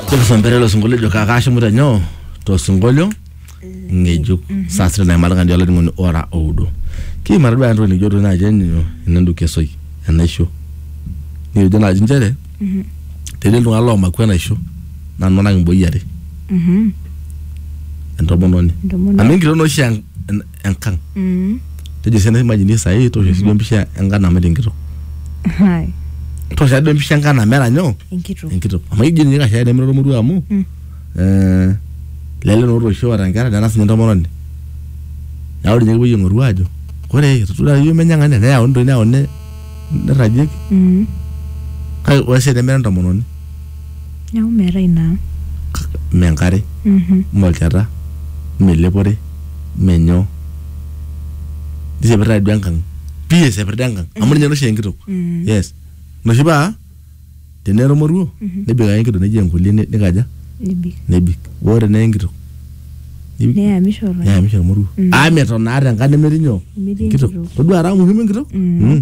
Tulisombere ilo sinkolio ejo kakashimu te nyoo to sinkolio ng'ejuk saa sita naimari kandi olainining'oni ora oudo. Kiimari duo entoki nikijo duo naaji enyo enenduki esoi enaisho. Nikijo naaji inchere tetii iltung'anak loomaku enaisho naa iltung'anak imboyie are entomononi. Entomononi. Amu enkitok naa oshi en- enkang Mm. tejo sii naimajini sahii tosha siduo empisha enkang nameta enkitok Hai. tosha duo empisha enkang nameta nyoo Enkitok. enkitok amu ijo ninye kashaa nemira ormoruo amu Mm. eh, lele naa otoishe oota nkera nena sinye entomononi neeku ninye kipuoi aing'oru aajo ore etodua iyiok menyang'anya neyauni toi neyauni nirragieki Mm. kake ore sii tenemira entomononi Neeku meetae ina ang'. mme enkare Mhm. mme olchata mme elepore mme nyoo nisepiritae duo enkang pii esepirita enkang amu ninye oshi enkitok Mm. yes ina oshi paa teneara emoruo nebik ake enkitok neji enkolie ne- nikaja Nebik. nebik boo teneye enkitok nebik- Neyamisho oltung'ani. neyamisho emoruo Mm. amu meton naa tenkang nemetii nyoo Nemetii enkitok. todua ara muhimu enkitok Mm. Mm.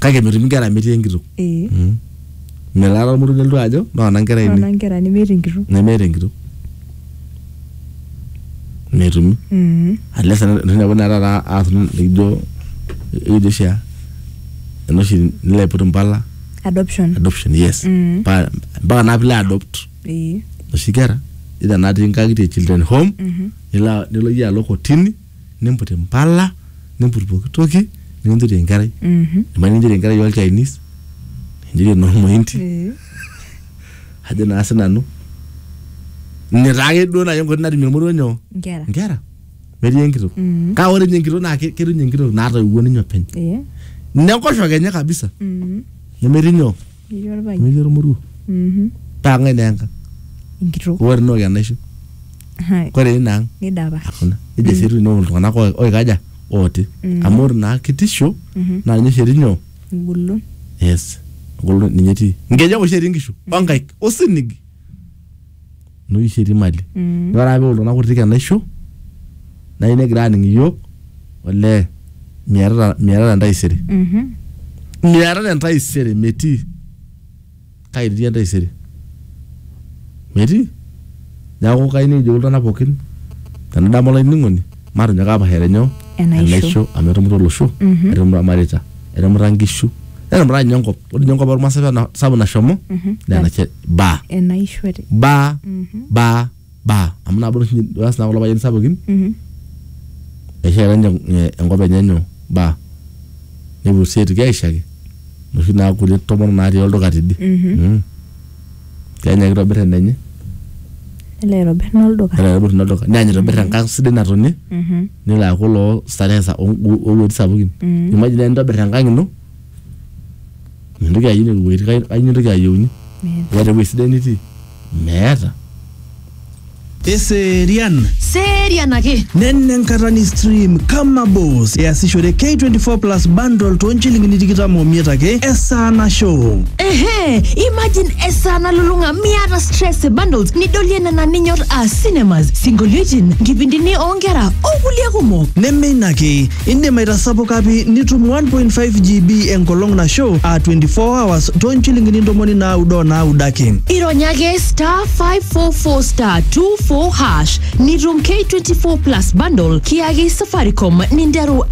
kake metumi nkera metii enkitok ee melaata olmutu nelotu ajo noona nkera ainei nona nkera nemeeta enkitok nemeeta enkitok metumi Mhm. unless ninepu naa taata aas nikijo ekijo oshi aa enoshi nilo aiput impala adoption adoption yes Mm. Pa- mpaka naa pilo adopt ee noshi kera either natii nkang'itie children home Mhm. nilo nilo iyie alo kotini nimput impala nimput pooki toki nikinchori enkerai Mhm. ebaiki nikinchori enkerai ol Chinese nikinchori enormointi Eh. ajo naa sinanu ine taake duo naaji enkoitoi natumie ormoruo nyoo Nkera. nkera metii enkitok Mhm. kake ore ninye enkitok naa ke- ketum ninye enkitok naatoiwuo ninye openy Eh. nenkoshoke enye kabisa Mhm. nemetii nyoo Etii orpayian. Metii ormoruo. Mhm. Paa ng'ae naa enkang? Enkitok. Ore ina ook enaisho. Hai. Ore ina ang? Nidapasha. Hakuna. Nejo sii eitu inook iltung'anak oi- oikaja? Ooti. Mm. Amu ore ina kitisho Mhm. naa ninye oshi etii nyoo? Engolon. Yes. Engolon ninye etii. Inkejek oshi etii inkishu o nkaik o sinig. enoshi sheti mali Mm. ore ake peok iltung'anak kutitik enaisho nai negira aning iyiook olee miatata miatata entaisere Mhm. miatata entaisere metii kake etii entaisere metii neeku kayieu nikijoki iltung'anak pookin tenadamu olainining'oni matonyok apashare nyoo Enaisho. amu etumuta olosho Mhm. etumuta irmareita etumuta inkishu netumuta ninye enkop ore ninye enkop ormaasai paa ena sapuk nashomo Mhm. naa ena shet ba enaishore ba Mhm. ba ba amu nabo oshi eas naa kulo payiani sapukin Mhm. eshaita ninye eh, enkop enye nyoo ba nepuo sii aitoki aishaki noshi naa kulie tomonok natii olduka tidie Mhm. Mm. kenya kitobir enenye nelo aitobir nolduka nelo aitobir ina olduka neany aitobir enkang sidai natonie Mhm. nelo aaku loo starehe sa- o- o- owuejitin sapukin Mhm. imagine naaji nintobir enkang ino mintoki ayieu nena wuejitin kai- kai nintoki ayieuni Meeta. keeta ewueji sidai nitii meeta Eserian. Serian ake. Nena enkata ni stream kama boss easishore K24 plus bundle too nchilingini tikitam omiet ake esaa nashow. Ehe, imagine esaa nalulung'a miata stress e bundles nidolie nena ninyor aa cinemas, sinkolioitin, nkipindini oonkera o kulie kumok. Neme ina ake, Indim aitasapuka pi nitum 1.5 GB enkolong nasho aa 24 hours too nchilingini ntomoni naaudo o naaudo ake. Irony ake *544*24# nitum K24 plus bundle kiyaki Safaricom ninteru